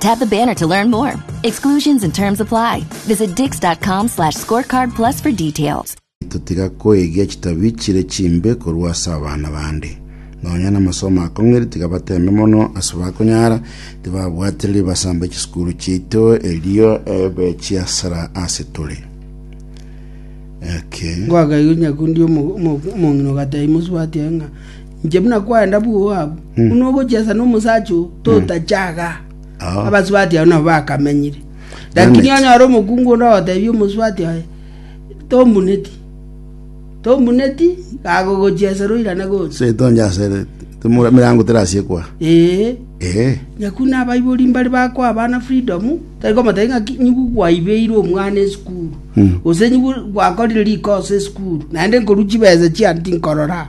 Tap the banner to learn more. Exclusions and terms apply. Visit dix.com slash scorecard plus for details. Totiga koegia chitabi chire chimbe korwa ase abana bande. Nonya namasomo akong'iri tiga bateme mono ase bakonyara tibabwatire ribaso amba chisukuru chiaito erio ebe chiasara ase tore. Okay. Gwakaigwe nyakundi omong'ina ogateba imosubati aye ng'a Inche buna kwaenda bwoo abwo, buna ogochia ase nomosacha oo, totache aaga. Abasubati abwo nabo bakamenyire. Lakini Damn it. onyore omokungu onde ogotebia omosubati oye, tombuneti, tombuneti, kagogochia ase roirane gocha. setonja ase temura- mirango terasiekwa Ee, ee nyaku nabaibori mbare bakoa abana freedom, tari komotebia ng'a ki- nyiku kwaibeire omwana esukuru, gose nyiku gwakorire rikosa esukuru, naende nkorwa chibesa chiane tinkorora.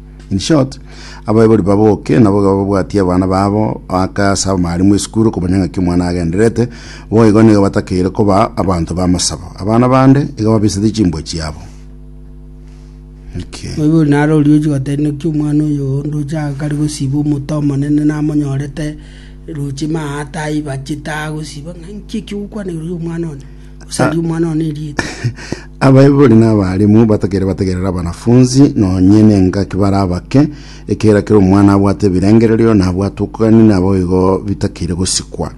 In short, abaibori baboke nabo babwatie abana babo ake ase abamwarimu esukuru komanya ng'aki omwana agendererete, boigo nigo batakeire koba abanto b'amasabo. Abana bande iga babisatie chimbwa chiabo. Okay. Oibori naro oriochi goteba naki omwana oyo oo ndoche agakare gosiba omote omonene namonyorete roche maate aiba chitaha gosiba ng'a nki eki ogokwana igoro y'omwana one. Osaria omwana one erieta. Abaibori na abarimu batakeire bategerere abanafunzi nonye nengaki bare abake, ekiagera kera omwana abwate ebirengererio na abwate okogania nabo igo bitakeire gosikwa.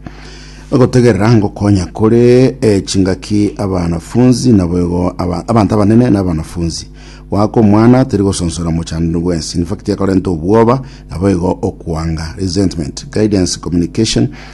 Ogotegerera ngokonya kore eh, chingaki abanafunzi nabo igo aba- abanto abanene na abanafunzi. Goaka omwana teri gosonsora mochandani bwensi. In fact, ekorenta obwoba nabo igo okwanga, resentment. Guidance, communication,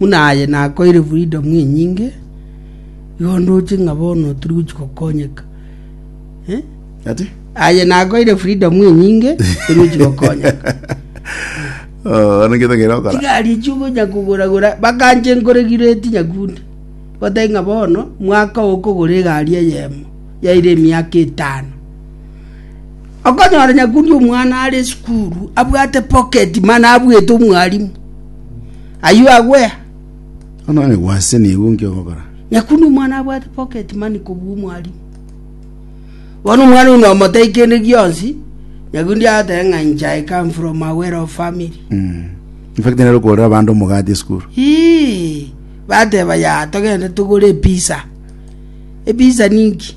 Buna aye nakoeire freedom enyinge, igo ndoche ng'a bono tiri gochia gokonyeka. Eh? Ati? Aye nakoeire freedom enyinge, tiri gochia gokonyeka. Oh, ano ngete ngero okora. Chigari echi ogonya kogoragora, bakanche nkoregireti nyakunde. Batari ng'a bono, mwaka okogora egari eyemo, yaire emiaka etano. Okonyora nyakundi omwana are esukuru abwate poketi mana abwete omwalimu, ayio agwea. Ononye gwase nigo nki ogokora? Nyakundi omwana abwate poketi mani kobua omwalimu. Bono omwana oino omotei kende gionsi, nyakundi agoteba ng'a inche I come from a well of family. Mm. In fact, nero okorera abande omogati esukuru. Ii, bateba ya togende togore episa. Episa ninki?